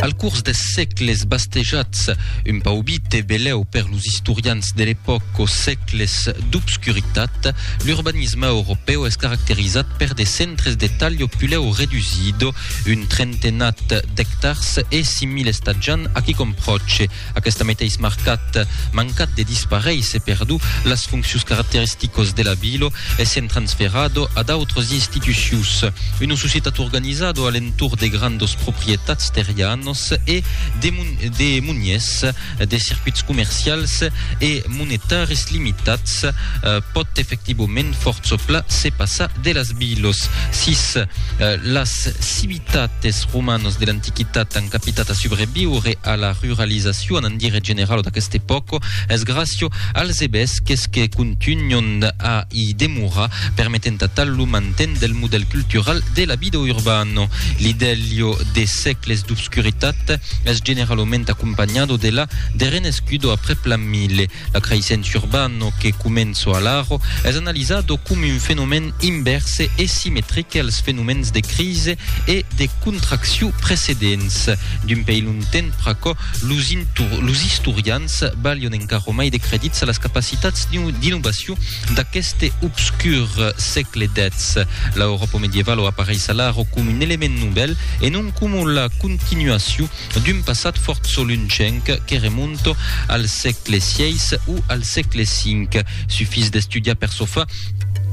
Al curs des sègles bastejats, un paubit e belèu per los istorians de l'epòca, o sègles d'obscuritat, l'urbanisme europèu es caracterizat per de centres de talho pulèu redusido, un trentenat d'ectars e 5.000 estatjants a quicòm pròche. Aquest meteis marcat mancat de disparéisser perdu las fonccius caracteristicos de la vilo essent transferado a d'autros institucius. Una societat organizado a l'entorn de grandos proprietats terrianos e de de muniers de circuits comercials e monetaris limitats pòt efectivament fòrça pla se passar de las vilos sis las Tanben es romanos de l'antiquitat an capitat a subreviure a la ruralizacion en dire generalo d'aquesta epòca, es gràcia als ebesques que contunhon a i demorar, permetent atal lo manten del modèl cultural de la vida urbana. L'idèlio de sègles d'obscuritat es generalament acompanhado de la de renescudo aprèp l'an 1000. La creissença urban o que començo a l'aro es analizado com un fenomèn invèrse e simetrique als fenomèns de crise e de contracciu precedents. D'un pei longtemps pr'aquò, los, los istorians balhon encara mai de credits a las capacitats d'innovaciu d'aqueste obscur sègle xix. L'Auròpa medievala apareis a l'aro com un element novèl e non com la continuaciu d'un passat fòrt solunchenc que remonta al sègle xvi o al sègle xv. Sufís d'estudiar per çò far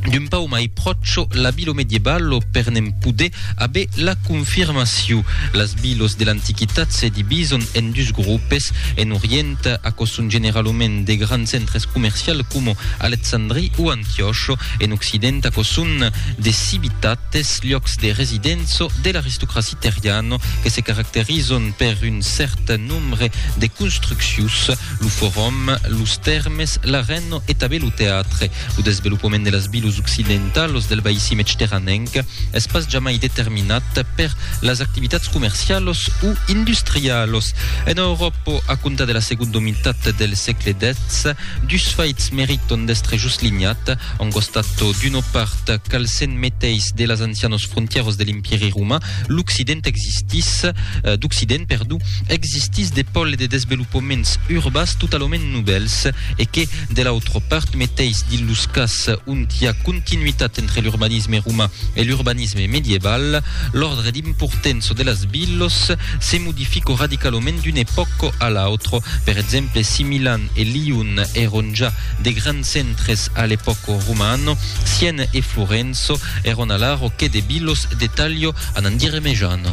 d'un pauc mai pròche la vila medievalo per ne'n poder aver la confirmacion. Las vilas de l'Antiquitat se divisan en dus grupes. En Orient, aquò son generalament de grands centres comercials coma Alexandria o Antiòcha. En Occident, aquò son de civitates, liòcs de residença de l'aristocracia. Terriano que se caracterizon per un cèrt nombre de construccions, lo forum, los tèrmes, l'arèno e tanben lo teatre. Lo desvelopament de las vilos occidentalos del baissi mechteranenc es pas jamai determinat per las activitats comercialos o industrialos. En Euròpa, a comptar de la segonda mitat del sègle xix, dus faits meriton d'èstre joslinhat, En costat d'una part, cal se'n meteis de las ancianos frontièros de l'Empièri Romà, l'Occident existís, d'Occident, perdó, existís de pòl e de desvelopaments urbas totalament novèls, e que, de l'autra part, meteis dins los cas ont i a continuitat entre l'urbanisme romà e l'urbanisme medieval, l'òrdre d'importença de las vilos se modifica radicalament d'una epòca a l'autra. Per exemple, si Milan e Lion èron ja De grands centres a l'epòca romana, Siena e Florença, èron alara o que de vilos de talha anant diremejant.